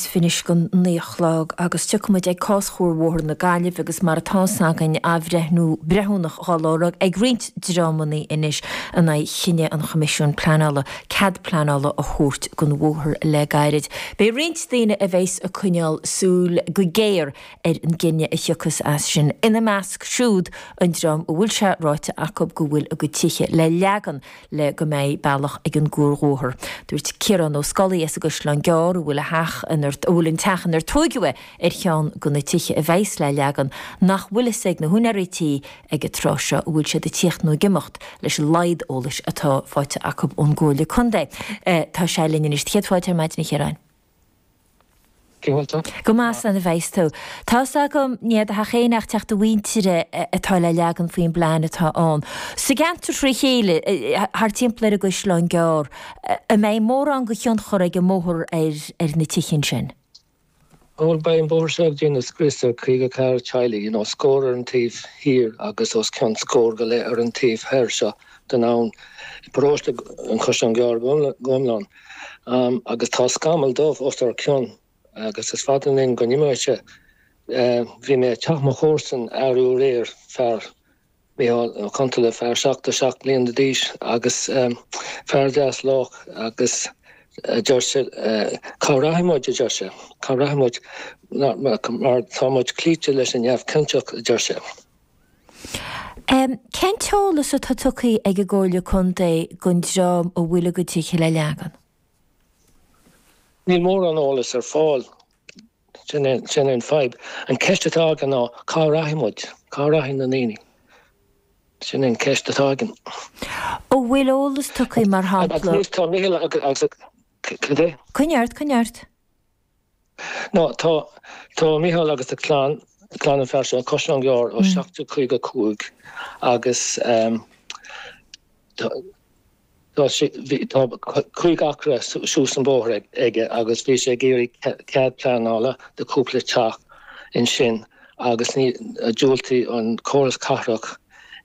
fiche noiméad go naoi a chlog agus tiocfaidh muid ag cás Chuarbhóthar na Gaillimhe agus mar atá fhios againn athbhreithniú breithiúnach dhá lorg ag roinnt dreamannaí anois in aghaidh chinneadh an Choimisiúin Pleanála cead pleanála a thabhairt don bhóthar le gairid. Beidh roinnt daoine a bheas ag coinneáil súil go géar ar an gcinneadh a thiocfas as sin, ina measc siúd an dream a bhfuil sé ráite acu go bhfuil a gcuid tithe le leagan le go mbeidh bealach ag an gcuarbhóthar. Dúirt Ciarán Ó Scolaí as an gCaisleán Gearr, a bhfuil a theach inar, a bhfuil an teach inar tóigeadh é, ar cheann go na tithe a bheas le leagan, nach bhfuil fhios ag na húinéirí tí ag an tráth seo an bhfuil siad ag tíocht nó ag imeacht, leis an laghad eolais atá faighte acu ón gComhairle Contae. Tá sé linn anois. Céad fáilte, ar maidin, a Chiaráin. Cé bhfuil tú? Go maith, slán a bheas tú. Tá's agam nach é do theach héin ach teach do mhuintire atá le leagan faoin bplean atá ann. Sa gceantar trí chéile, thart timpeall ar an gCaisleán Gearr, an mbeidh mórán go thionchar ag an mbóthar ar na tithe ansin? Bhuel, beidh an bóthar seo ag déanamh scrios ar caoga ceathair teaghlaigh, you know, scór ar an taobh thiar agus os cionn scór go leith ar an taobh thoir seo den abhann, i bparóiste an Chaisleán Gearr go hiomlán. Agus tá scamall dubh os ár cionn agus is fada linn go n-imeoidh sé. Bhí mé ag teach mo chomharsan aréir, fear, Micheál Ó Contaile, fear 77 bliana d'aois agus fear deas lách agus a deir sé, cá rachaidh muid, a deir sé, cá rachaidh muid mar tá muid cloíte leis an neamhchinnteacht, a deir sé. Cén t-eolas atá tugtha ag an gComhairle Contae don dream a bhfuil a gcuid tithe le leagan? Níl mórán eolais ar fáil, sin é an fhadhb. An cheist atá againn ná cá rachaidh muid, cá rachaidh na ndaoine? Sin é an cheist atá againn. An bhfuil eolas tugtha, mar shampla? Anois tá Micheál agus, cad é? Coinnigh ort, coinnigh ort. Nó tá. Tá Micheál agus a chlann, clann an fhear seo, sa gCaisleán Gearr ó 1755 agus tá sé, bhí, tá cúig acra suas an bóthar aige agus bhí sé ag iarraidh cead pleanála do chúpla teach ansin agus ní, diúltaigh an córas cathrach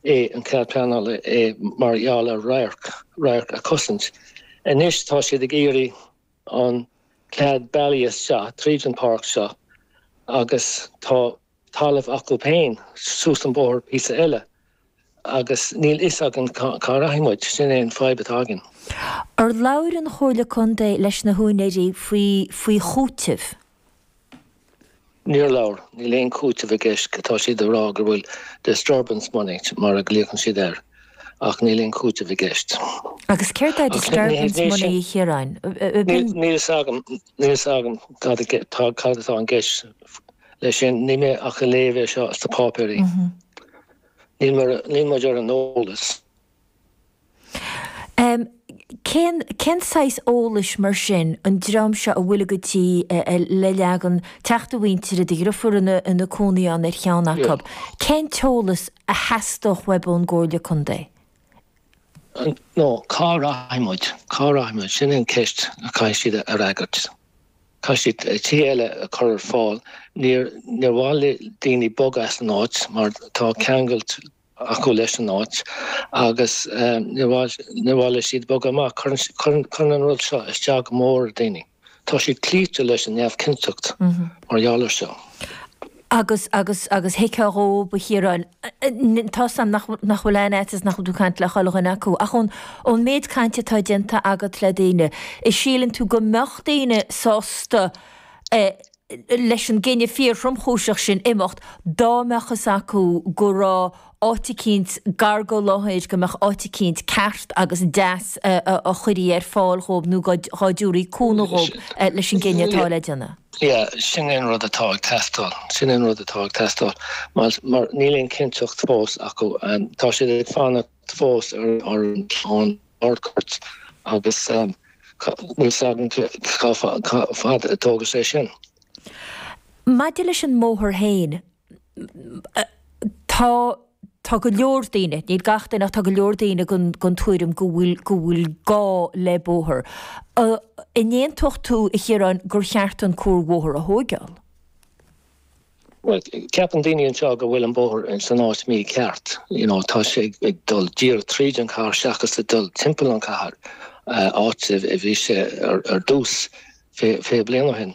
é, an cead pleanála é mar gheall ar radharc, radharc a chosaint. Anois tá siad ag iarraidh. an cead bealach isteach tríd an páirc seo agus tá talamh acu féin suas an bóthar píosa eile agus níl fhios againn cá rachaidh muid, sin é an fhadhb atá againn. Ar labhair an Chomhairle Contae leis na húinéirí faoi faoi chúiteamh? Níor labhair. Níl aon cúiteamh i gceist, tá siad ag rá go bhfuil disturbance money, mar a ghlaocann siad air, ach níl aon cúiteamh i gceist. Agus céard é disturbance money, a Chiaráin? Níl fhios agam, níl fhios agam cad atá i gceist leis sin, níl mé ach ag léamh seo sna páipéirí. Níl muid ar an eolas. Cén saghas eolais mar sin an dream seo a bhfuil a gcuid tithe le leagan, teacht a mhuintire, do dhriofúr ina cónaí ann ar cheann acu? Cén t-eolas a theastódh uaibh ón gComhairle Contae? Bhuel cá rachaidh muid? Cá rachaidh muid? Sin an cheist a chaithfidh siad a fhreagairt. Caithfidh siad tithe eile a chur ar fáil. Níor mhaith le daoine bogadh as an áit mar tá ceangal acu leis an áit agus níor mhaith leo siúd bogadh amach. Cuireann an rud seo isteach go mór ar daoine. Tá siad cloíte leis an neamhchinnteacht mar gheall ar seo. Agus, agus, agus thuigfeá dhóibh, a Chiaráin. Tá 's a'm nach bhfuil aon fhaitíos nach bhfuil tú ag caint le chuile dhuine acu. Ach ón méid cainte atá déanta agat le daoine, síleann tú go mbeadh daoine sásta eh, leis an gcinneadh fíor-thromchúiseach sin imeacht, dá mbeadh fhios acu go raibh áit eicínt gar go leor, go mbeadh áit eicínt ceart agus deas dá gcuirtí ar fáil dhóib nó dhá dtiúrí cúnamh dhóib leis an gcinneadh atá le déanamh. Yeah, sin é an rud atá ag teastáil, sin é an rud atá ag teastáil, mar níl aon chinnteacht fós acu, tá siad ag fanacht fós ar an Harcourt, agus níl 's agam cá fad a dtógfaidh sé sin. Maidir leis an mbóthar féin, tá go leor daoine, níl gach duine ach tá go leor daoine den tuairim go bhfuil gá le bóthar. An aontódh tú, a Chiaráin, gur cheart an cuarbhóthar a thóigeáil? Bhuel, ceapann daoine anseo go bhfuil an bóthar san áit mícheart, you know, tá sé ag dul díreach tríd an chathair seachas ag dul timpeall an chathair, áit a bhí sé ar dtús fiche bliain ó shin.